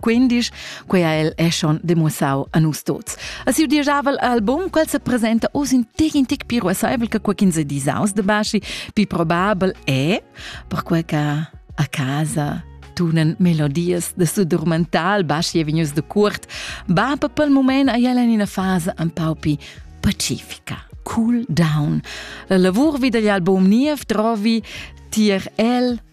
Quindisch, quei ha el è schon demussau a nus tots. A siu dieschavel album, quel se presenta oz in tec in tec piru assaivel che quei quinze disaus de basci, pi probabel è, perquei che a casa tunen melodias de su dormental basci e vignus de curt, ba per pel moment a ella in una fase un pau pi pacifica. Cool down. La lavur vid agl album niev trovi tier el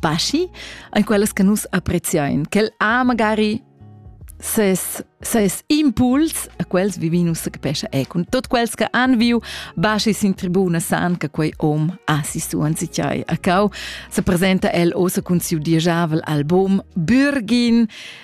paschi ein quellas che nus appreziein, quel ha magari ses ses impuls a quels vivinus che pescha e cun tot quels che han viu baschi sin tribuna san che quei om ha si suan si chai a cau se presenta el osa cun siu diajavel album Bürgin